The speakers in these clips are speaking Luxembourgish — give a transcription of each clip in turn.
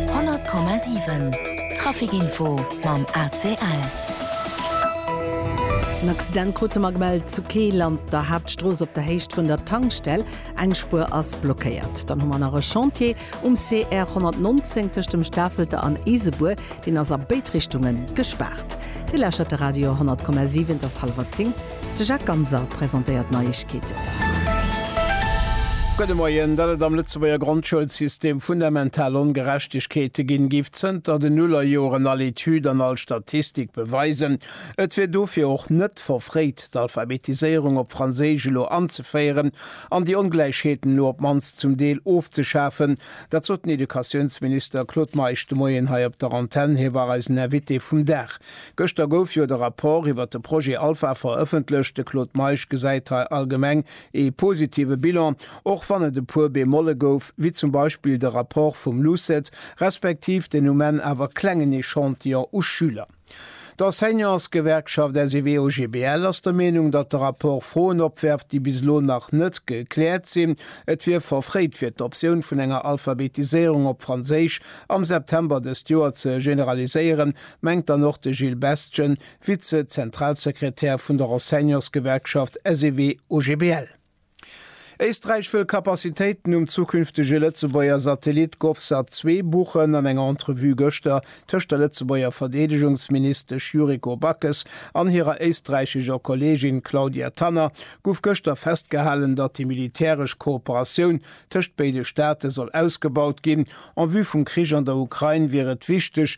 100,7 Traficinfo mam ACL. En Accident krute mer gemellt zu Keel an der Haaptstrooss op der Héicht vun der Tankstell. Eng Spuer ass blockéiert. Dann hu mer nach e Chantier um CR 119 tëscht dem Stafelter an Isebuer. Deen ass a béid Richtunge gespaart. Dir lauschert de Radio 100,7, et ass hallwer 10. De Jacques Ganser presentéiert d'Neiegkeeten. Gudde Moien. Datt et am Lëtzebuerger Grondschoulsystem fundamental Ongerechtegkeete ginn, géif zënter den Nullerjoren all Etüd an all Statistik beweisen. Et wier dofir och net verfréit, d'Alphabetiséierung op Franséisch elo anzeféieren an déi Ongläichheeten elo op d'mannst zum Deel ofzeschafen. Dat sot den Educatiounsminister Claude Meisch de Moien hei op der Antenn. Hie war eisen Invité vum Dag. Gëschter gouf jo de Rapport iwwert de Projet Alpha verëffentlecht. De Claude Meisch gesäit hei allgemeng ee positive Bilan, och wann et e puer Bemolle gouf, wéi zum Beispill de Rapport vum LUCET, respektiv den um Enn awer klengen Echantillon u Schüler. D'Enseignantsgewerkschaft SEW-OGBL ass der Meenung, datt de Rapport Froen opwerft, déi bis elo nach net gekläert sinn. Et wier verfréit, fir d'Optioun vun enger Alphabetiséierung op Franséisch am September dëst Joer ze generaliséieren, mengt dann och de Gilles Bestgen, Vize-Zentralsekretär vun der Enseignantsgewerkschaft SEW-OGBL. Éisträich wëll Capacitéiten um zukünftege Lëtzebuerger Satellit Govsat 2 buchen. An enger Entrevue gëschter tëscht der Lëtzebuerger Verdeedegungsministesch Yuriko Backes an hirer éisträichescher Kolleegin Claudia Tanner gouf gëschter festgehalen, datt déi militäresch Kooperatioun tëscht béide Staate soll ausgebaut ginn. En vue vum Krich an der Ukrain wier et wichteg,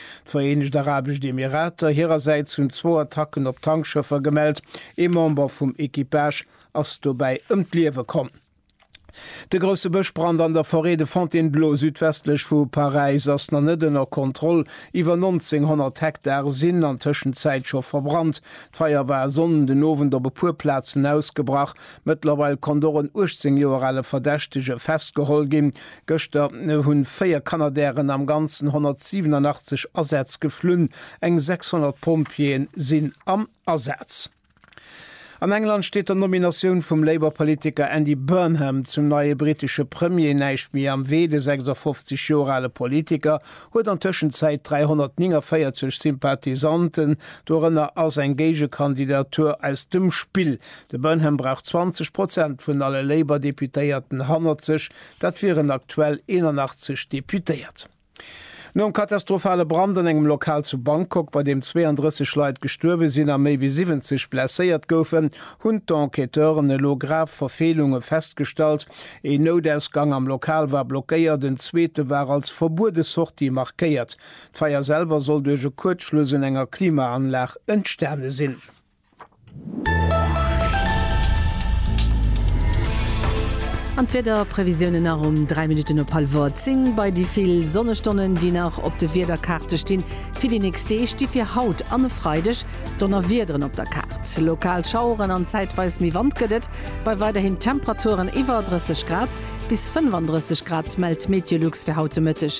D'Vereenegt Arabescht Emirater hirersäits hunn zwou Attacken op Tankschëffer gemellt. Ee Member vum Equipage ass dobäi ëm d'Liewe komm. De grousse Bëschbrand an der Forêt de Fontainebleau südwestlech vu Paräis ass nach net ënner Kontroll. Iwwer 1900 Hektar sinn an Tëschenzäit scho verbrannt. D'Feier war e Sonnden den Owend op e puer Plazen ausgebrach. Mëttlerweil konnt och en 18 Joer ale Verdächtege festgeholl ginn. Gëschter hunn 4 Canadairen am Ganzen 187 Asätz geflunn, eng 600 Pompjeeën sinn am Asaz. An England steet der Nominatioun vum Labour Politiker Andy Burnham zum neie brittesche Premier näischt méi am Wee. De 56 Joer ale Politiker huet an Tëschenzäit 349 Sympathisanten, dorënner ass eng Géigekandidatur aus dem Spill. De Burnham brauch 20 Prozent vun alle Labour Deputéierten hannert sech, Dat wieren aktuell 81 Deputéiert. Nom katastrophale Brand an engem Lokal zu Bangkok, bei deem 32 Leit gestuerwe sinn a méi wéi 70 blesséiert goufen, hunn d'Enquêteuren elo grav Verfeelunge festgestallt. Een Noudausgang am Lokal war blockéiert, en zweete war als verbuede Sortie markéiert. D'Feier selwer soll duerch e Kuerzschluss un enger Klimaanlag entstane sinn. An d'Wiederprevisiounen nach um 3 Minutten op hallwer 10. Bei déi vill Sonnestonnen, déi nach op de Wiederkaarte stinn fir déi nächst Deeg, sti fir haut an e Freideg Donnerwiederen op der Kaart. Lokal Schaueren an zäitweis méi Wand gëtt et bei weiderhin Temperaturen iwwer 30 Grad. Bis 35 Grad mellt Meteolux fir haut de Mëtteg.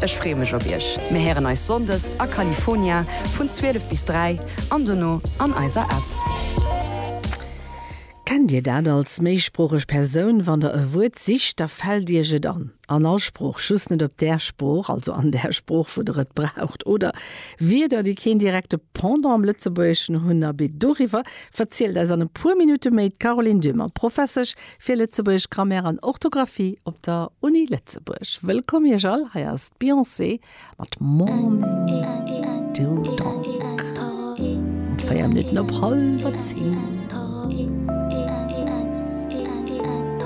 Ech freeë mech op iech. Mir héieren eis Sonndes a California vun 12 bis 3 an dono an eiser App. Kennt Dir dat als méisproocheg Persoun? Wann Der e Wuert sicht, da fält Iech et an an all Sprooch, just net op där Sprooch, also an där Sprooch, wou Der et braucht. Oder Wierder, déi keen direkte Pendant am Lëtzebuergeschen hunn. Abee doriwwer verzielt eis an e puer Minutte méi d'Caroline Döhmer, Professesch Fir Lëtzebuergesch Grammaire an Orthographie op der Uni Lëtzebuerg. Wëllkomm iech all, hei ass d'Beyoncé mat Morning Do Dog um 4 Minutten op hallwer 10.